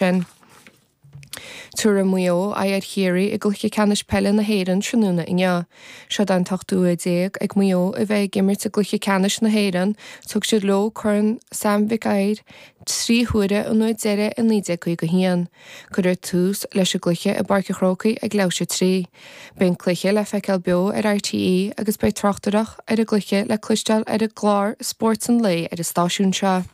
sin. Tabharfaidh Maigh Eo aghaidh ar Chiarraí i gcluiche ceannais peile na hÉireann tráthnóna inniu. Seod é an t-ochtú huair déag ag Maigh Eo a bheith ag imirt i gcluiche ceannais na hÉireann, thug siad leo Corn Sam Mhic Uidhir trí huaire an uair deiridh i 1951. Cuirfear tús leis an gcluiche i bPáirc an Chrócaigh ag leathuair théis 3. Beidh an cluiche le feiceáil beo ar RTÉ agus beidh tráchtaireacht ar an gcluiche le cloisteáil ar an gclár Spórt an Lae ar an stáisiún seo.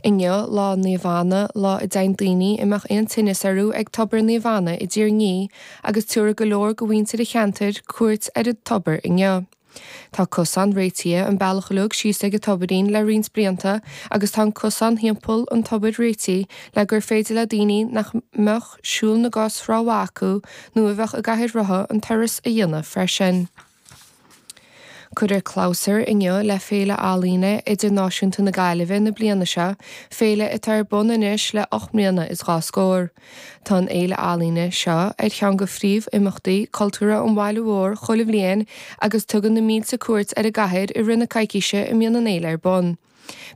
Inniu lá Naomh Anna, lá a dtéann daoine a mbeadh aon tinneas orthu ag tobar Naomh Anna i dTír an Fhia agus tabharfaidh go leor go mhuintir a cheantair cuairt ar an tobar inniu. Tá cosán réitithe an bealach uilig síos ag an tobairín le roinnt blianta agus tá an cosán thimpeall an tobair réitithe le gur féidir le daoine nach mbeadh siúl na gcos ró mhaith acu nó a bheadh i gcathaoir rotha an turas a dhéanamh freisin. Cuirfear clabhsúr inniu le Féile Ealaíne Idirnáisiúnta na Gaillimhe na bliana seo, féile atá ar bun anois le ocht mbliana is dhá scór. Tá an fhéile ealaíne seo ar cheann go phríomhimeachtaí cultúrtha an bhaile mhóir chuile bhliain agus tugann na mílte cuairt ar an gcathair i rith na coicíse a mbíonn an fhéile ar bun.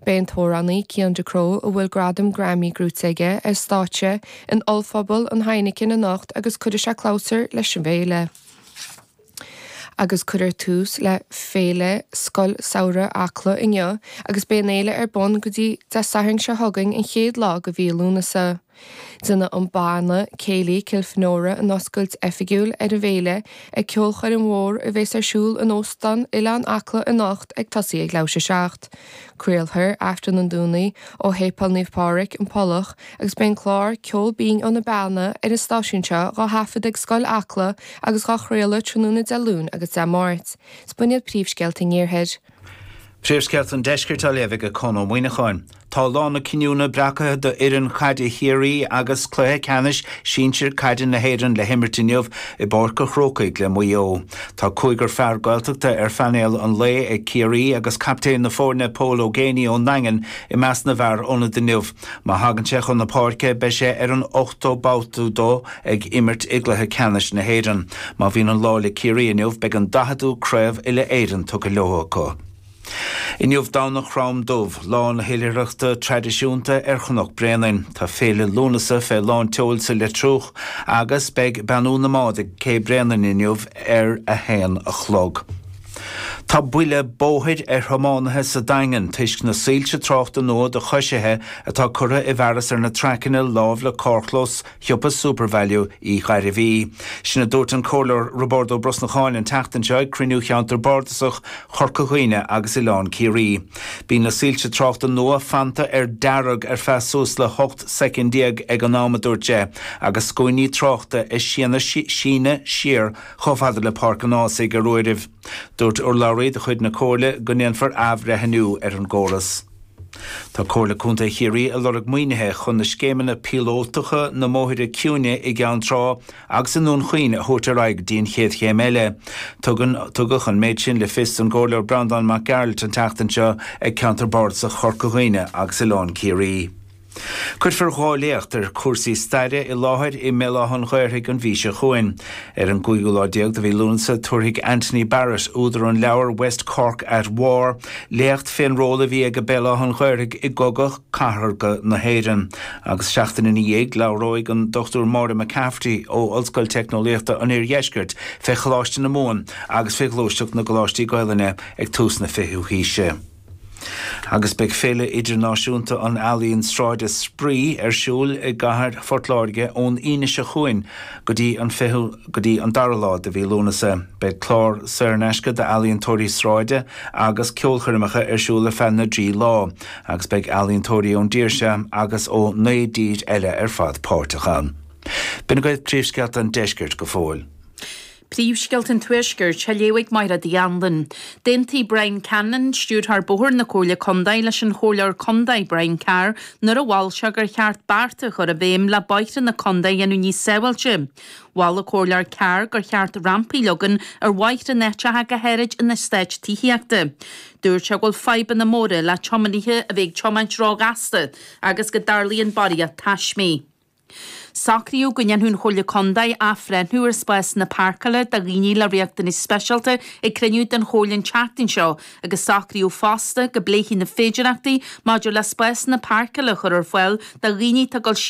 Beidh an t-amhránaí Cian Ducrot, a bhfuil gradam Grammy gnóite aige, ar stáitse in ollphuball an Heineken anocht agus cuirfidh sé clabhsúr leis an bhféile. agus cuirfear tús le Féile Scoil Samhraidh Acla inniu agus beidh an fhéile ar bun go dtí Dé Sathairn seo chugainn, an chéad lá de mhí Lúnasa. Déanfaidh an banna céilí Kilfenora an oscailt oifigiúil ar an bhféile ag ceolchoirm mhór a bhéas ar siúl in Óstán Oileán Acla anocht ag tosaí ag leathuair théis 7. Craolfar Aifreann an Domhnaigh ó Shéipeál Naomh Pádraig, An Pollach agus beidh an clár Ceol Binn ó na Beanna ar an stáisiún seo dhá thaifead ag Scoil Acla agus dhá chraoladh tráthnóna Dé Luain agus Dé Máirt. Is b'in iad príomhscéalta an iarthair. Príomhscéalta an Deiscirt á léamh ag Conn Ó Muíneacháin. Tá lá na cinniúna breacaithe do fhoireann caide Chiarraí agus cluiche ceannais sinsir caide na hÉireann le himirt inniu i bPáirc a' Chrócaigh le Maigh Eo. Tá cúigear fear Gaeltachta ar phainéal an lae ag Ciarraí agus captaen na foirne Pól Ó Géibheannaigh ón nDaingean i measc na bhfear ionaid inniu. Má thagann sé chun na páirce beidh sé ar an ochtú babhta dó ag imirt i gcluiche ceannais na hÉireann. Má bhíonn an lá le Ciarraí inniu beidh an daicheadú craobh uile-Éireann tugtha leo acu. Inniu Domhnach Chrom Dubh, lá na hoilithreachta traidisiúnta ar Chnoc Bréanainn. Tá féile Lúnasa fé lán tseoil sa Leitriúch agus beidh Beannú na mBád ag Cé Bréanainn inniu ar a haon a chlog. Tá buille bóthair ar thiománaithe sa Daingean toisc na soilse tráchta nua do choisithe atá curtha i bhfearas ar na traiceanna lámh le carrchlós shiopa Supervalu Uí Ghairbhí. Sin a dúirt an Comhairleoir Roibeárd Ó Brosnacháin an tseachtain seo ag cruinniú Cheantar Bardasach Chorca Dhuibhne agus Oileán Ciarraí. Bíonn na soilse tráchta nua fanta ar dearg ar feadh suas le hocht soicind déag ag an am a dúirt sé agus scuainí tráchta ag síneadh siar Chomh fada le Páirc an Ághasaigh ar uairibh. Dúirt urlabhraí de chuid na Comhairle go ndéanfar athbhreithniú ar an gcóras. Tá Comhairle Contae Chiarraí ag lorg maoinithe chun na scéimeanna píolótacha na mbóithre ciúine i gCeann Trá agus i nDún Chaoin a thabhairt ar aghaidh go dtí an chéad chéim eile. Tugann tugadh an méid sin le fios don gComhairleoir Breandán Mac Gearailt an tseachtain seo ag Ceantar Bardasach Chorca Dhuibhne agus Oileán Ciarraí. Cuirfear dhá léacht ar chúrsaí staire i láthair i mBéal Átha'n Ghaorthaidh an mhí seo chugainn. Ar an gcúigiú lá déag de mhí Lúnasa tabharfaidh Anthony Barrett, údar an leabhair West Cork at War, léacht fén ról a bhí aige Béal Átha'n Ghaorthaidh i gCogadh Cathartha na hÉireann agus seachtain ina dhiaidh labhróidh an Dr Máire McCafferty ó Ollscoil Teicneolaíochta an Oir-Dheiscirt fé Choláiste na Mumhan agus fé ghluaisteacht na gColáistí Gaelainne ag tús na fichiú haoise. Agus beidh Féile Idirnáisiúnta an Ealaíon Sráide 'Spraoi' ar siúl i gcathair Phort Láirge ón Aoine seo chugainn go dtí an 20ú go dtí an 2ú lá de mhí Lúnasa. Beidh clár saor in aisce d'ealaíontóirí sráide agus ceolchoirmeacha ar siúl ar feadh na dtrí lá agus beidh ealaíontóirí ón dtír seo agus ó naoi dtír eile ar fad páirteach ann. B'in agaibh príomhscéalta an deiscirt go fóill. Príomhscéalta an Tuaiscirt á léamh ag Michelle Nic Grianna. D'aontaigh Brian Cannon, Stiúrthóir Bóithre na Comhairle Contae, leis an Chomhairleoir Contae, Brian Carr, nuair a mhol sé gur cheart bearta a chur i bhfeidhm le bóithre na Contae a dhéanamh níos sábháilte. Mhol an Comhairleoir Carr gur cheart rampaí a leagan ar bhóithre in áiteacha go háirid in eastáit tithíochta. Dúirt sé go bhfuil fadhbanna móra le tiománaithe a bheith ag tiomáint ró-ghasta agus go dtarlaíonn barraíocht taismí. Socraíodh go ndéanfadh an Chomhairle Contae athbhreithniú ar spásanna páirceála do dhaoine le riachtanais speisialta ag cruinniú den Chomhairle an tseachtain seo agus socraíodh fosta go bpléifí na féidireachtaí maidir le spásanna páirceála a chur ar fáil do dhaoine atá ag dul